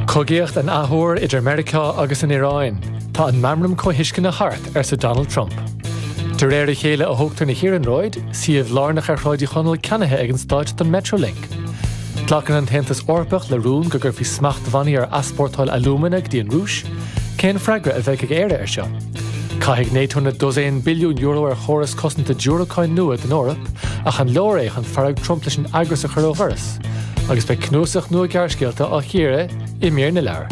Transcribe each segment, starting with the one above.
Cogaíocht in athuair idir Meiriceá agus an Iaráin, tá an meamram comhthuisceana thart, arsa Donald Trump. De réir a chéile a thógtar na hiarnróid, suíomh lárnach ar Shráid Uí Chonaill ceannaithe ag an stáit don Metrolink. Glacann an tAontas Eorpach le rún go gcuirfí smachtbhannaí ar easpórtáil alúmana go dtí an Rúis, cén freagra a bheidh ag Éire air seo? Caithfidh Nato na dosaein billiún euro ar chóras cosanta diúracáin nua don Eoraip ach an leor é chun fearg Trump leis an eagras a chur ó dhoras? Agus beidh cnuasach nua gearrscéalta á chíoradh i mír na leabhar.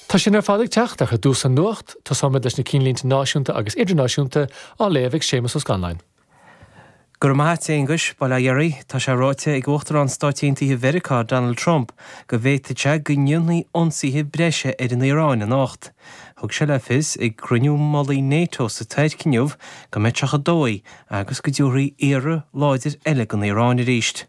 Tá sin ar fad ag teacht ach ar dtús an nuacht, tosóimid leis na cinnlínte náisiúnta agus idirnáisiúnta á léamh ag Séamus Ó Scanláin. Go raibh maith a't, Aonghuis. Bail ó Dhia oraibh. Tá sé ráite ag Uachtarán Stáit Aontaithe Mheiriceá, Donald Trump, go bhféadfadh sé go ndéanfaí ionsaithe breise ar an Iaráin anocht. Thug sé le fios ag cruinniú mullaigh Nato sa Tuirc inniu go mba é ba dhóigh agus go dtabharfaí iarraidh láidir eile don Iaráin arís.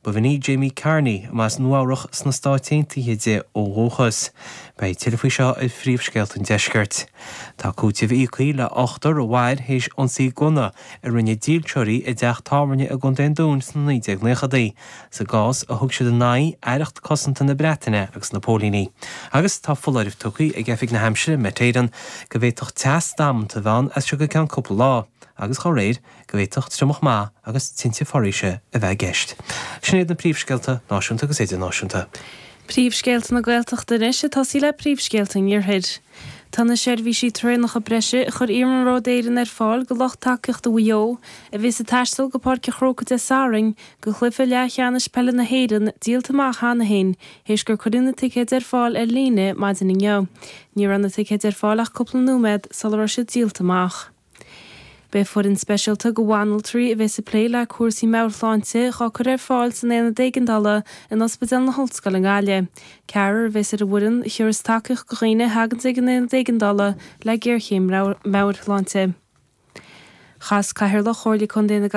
Ba í Jamie Carney, ab as Nua-Eabhrach sna Stáit Aontaithe di ó dhúchas. Beidh tuilleadh faoi seo ar phríomhscéalta an deiscirt. Tá cúiteamh íoctha le hochtar a mhair théis ionsaí gunna a rinne dílseoirí i dteach tábhairne i gContae an Dúin sna 1990idí, sa gcás a thug siad in aghaidh Aireacht Cosanta na Breataine agus na póilíní. Agus tá foláireamh tugtha ag Oifig na hAimsire, Met Éireann, go bhféadfadh teas damanta a bheith ann as seo go ceann cúpla lá, agus dá réir, go bhféadfadh triomach maith agus tinte foraoise a bheith i gceist. Sin iad na príomhscéalta, náisiúnta agus idirnáisiúnta. Príomhscéalta na Gaeltachta anois ag tosaí le príomhscéalta an Iarthair. Tá na seirbhísí traenacha breise a chuir Iarnród Éireann ar fáil do lucht tacaíochta Mhaigh Eo, a bheas ag taisteal go Páirc a' Chrócaigh Dé Sathairn, go cluiche leathcheannais peile na hÉireann, díolta amach cheana féin, théis gur cuireadh na ticéid ar fáil ar líne maidin inniu. Ní raibh na ticéid ar fáil ach cúpla nóiméad sula raibh siad díolta amach. Beidh foireann speisialta de bhanaltraí a bheas ag plé le cúrsaí meabhairshláinte á cur ar fáil san Aonad Éigeandála in Ospidéal na hOllscoile i nGaillimh. Ceathrar a bheas ar an bhfoireann a thiúras tacaíocht do dhaoine a thagann ag an Aonad Éigeandála le géarchéim meabhairshláinte. Chas Cathaoirleach Chomhairle Contae na.